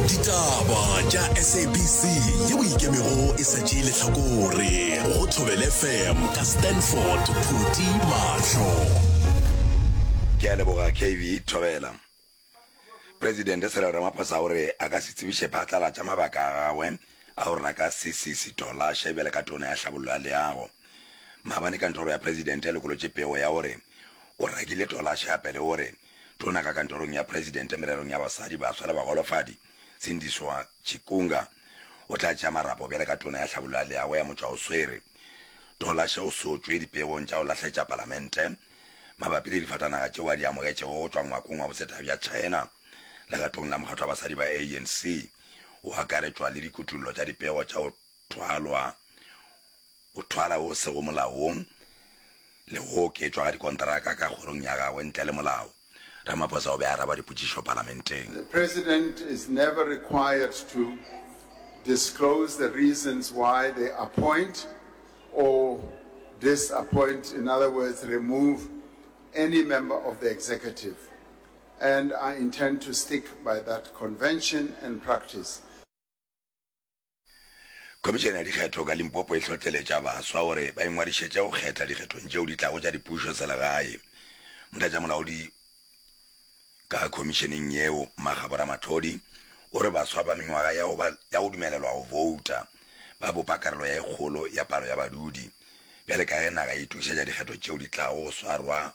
ditaba tša sabc yeo ikemego e sa tšee letlhakore go thobele fm ka stanford phuti mahlo ke a leboga kv thobela presidente sere ramaphosa o re a ka se tsebiše phatlalatša mabaka a gagwe a go rena ka sesisi tolashe bjale ka tona ya hlabollo ya leago maabane kantoro ya presidente e lokolotše pego ya gore o rakile tolashe gape le gore Tona ka Kantorong ya Presidente mererong ya Basadi, Baswa le Bagolofadi, Sindiswa Chikunga, o tla tšea marapo bjale ka Tona ya Hlabollo ya Leago ya Motšwa o Swere, Tola Sheo Sotšwe dipeong tša go lahletša Palamente mabapi le difatanaga tšeo a di amogetšego go tšwa ngwakong wa bosetagi bja China. Legatong la Mokgatlo wa Basadi ba ANC, o akaretšwa le dikutollo tša dipego tša go thwalwa O thwala o sego molaong le go oketšwa ga dikontraka ka kgorong ya gagwe ntle le molao, Ramaphosa o be a araba dipotšišo palamenteng. The President is never required to disclose the reasons why they appoint or disappoint, in other words remove, any member of the Executive and I intend to stick by that convention and practice. Khomišene ya Dikgetho ka Limpopo e hlohleletša baswa gore ba ingwadišetše go kgetha dikgethong tšeo di tlago tša dipušoselegae. Motlatšamolaodi ka khomišeneng yeo, Makgabo Ramatlhodi, o re baswa ba mengwaga ya go ba ya go dumelelwa go bouta ba bopa karolo ya e kgolo ya palo ya badudi bjale ka ge naga e itokišetša dikgetho tšeo di tlago go swarwa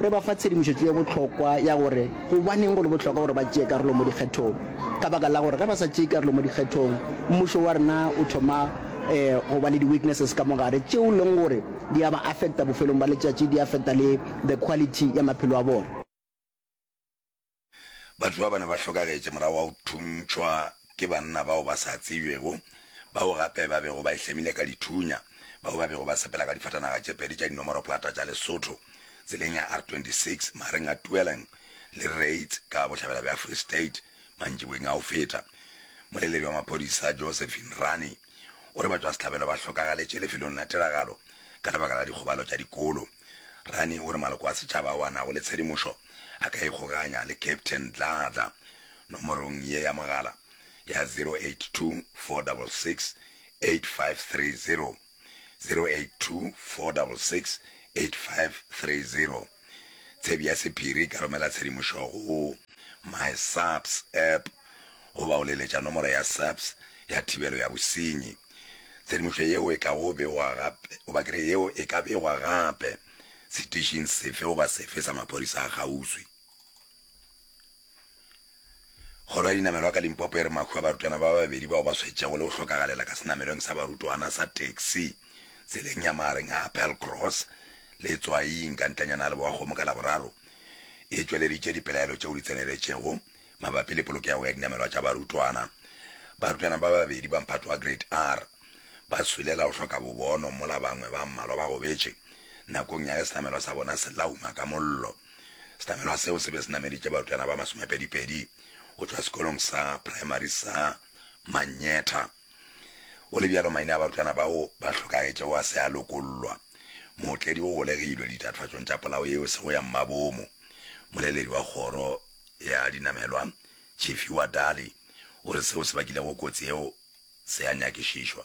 Re ba fa tshedimošetšo ye bohlokwa ya gore gobaneng go le bohlokwa gore ba tšee karolo mo dikgethong. Ka baka la gore ge ba sa tšee karolo mo dikgethong, mmušo wa rena o thoma go ba le di-weaknesses ka mo gare tšeo e leng gore di a ba affecta bofelong ba letšatši, di affecta le the quality ya maphelo a bona. Batho bao ba ne ba hlokagetše morago ga go thuntšhwa ke banna bao ba sa tsebjego, bao gape ba bego ba ihlemile ka dithunya, bao ba bego ba sepela ka difatanaga tše pedi tša dinomoroplata tša Lesotho tseleng ya R26 magareng ga Tweeling le Reitz ka bohlabela bja Free State mantšiboeng a go feta. Moleledi wa maphodisa Josephine Rani, gore batšwasehlabelo ba hlokagaletje lefelong la tiragalo ka lebaka la dikgobalo tša dikolo. Rani o re maloko a setšaba ao a nago le tshedimošo a ka ikgoganya le Captain Dladla nomorong ye ya mogala ya 0824668530, 0824668530. Tshebi ya sephiri e ka romela tshedimošo go My SAPS App goba go leletša nomoro ya SAPS ya thibelo ya bosenyi. Tshedimošo yeo e ka go begwa gape, goba ke re yeo e ka begwa gape setišing sefe goba sefe sa maphodisa a kgauswi. Kgoro ya Dinamelwa ka Limpopo e re mahu a barutwana ba babedi bao ba swetšego le go hlokagalela ka senamelweng sa barutwana sa taxi tseleng ya magareng ga Appelcross le Tswaing ka ntlanyana ga Leboakgomo ka Laboraro e tšweleditše dipelaelo tšeo di tseneletšego mabapi le polokego ya dinamelwa tša barutwana. Barutwana ba babedi ba mphato wa Grade R ba swele ka go hloka bobono mola bangwe ba mmalwa ba gobetše nakong ya ge senamelwa sa bona se lauma ka mollo. Senamelwa seo se be se nameditše barutwana ba masomepedipedi go tšwa sekolong sa praemari sa Mannyetha. Go le bjalo, maina a barutwana bao ba hlokagetšego a se a lokollwa. Mootledi o golegilwe ditatofatšong tša polao yeo se go ya mmabomo. Moleledi wa kgoro ya dinamelwa, Tshifhiwa Dali, o re seo se bakilego kotsi yeo se a nyakišišwa.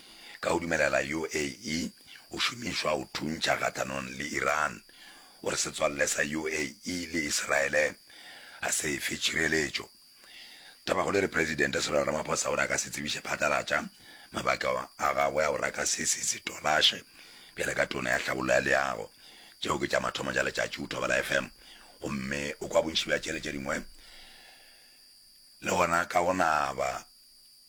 Ka go dumelela UAE go šomišwa go thuntšha kgahlanong le Iran gore setswalle sa UAE le Iseraele ga se e fe tšhireletšo. Tabakgolo e re Presidente Cyril Ramaphosa o re a ka se tsebiše phatlalatša mabaka a gagwe a go raka se se setolashe bjale ka Tona ya Tlhabollo ya Leago. Tšeo ke tša mathomo tša letšatši go Thobela FM gomme o kwa bontši bja tšele tše dingwe le gona ka go naba.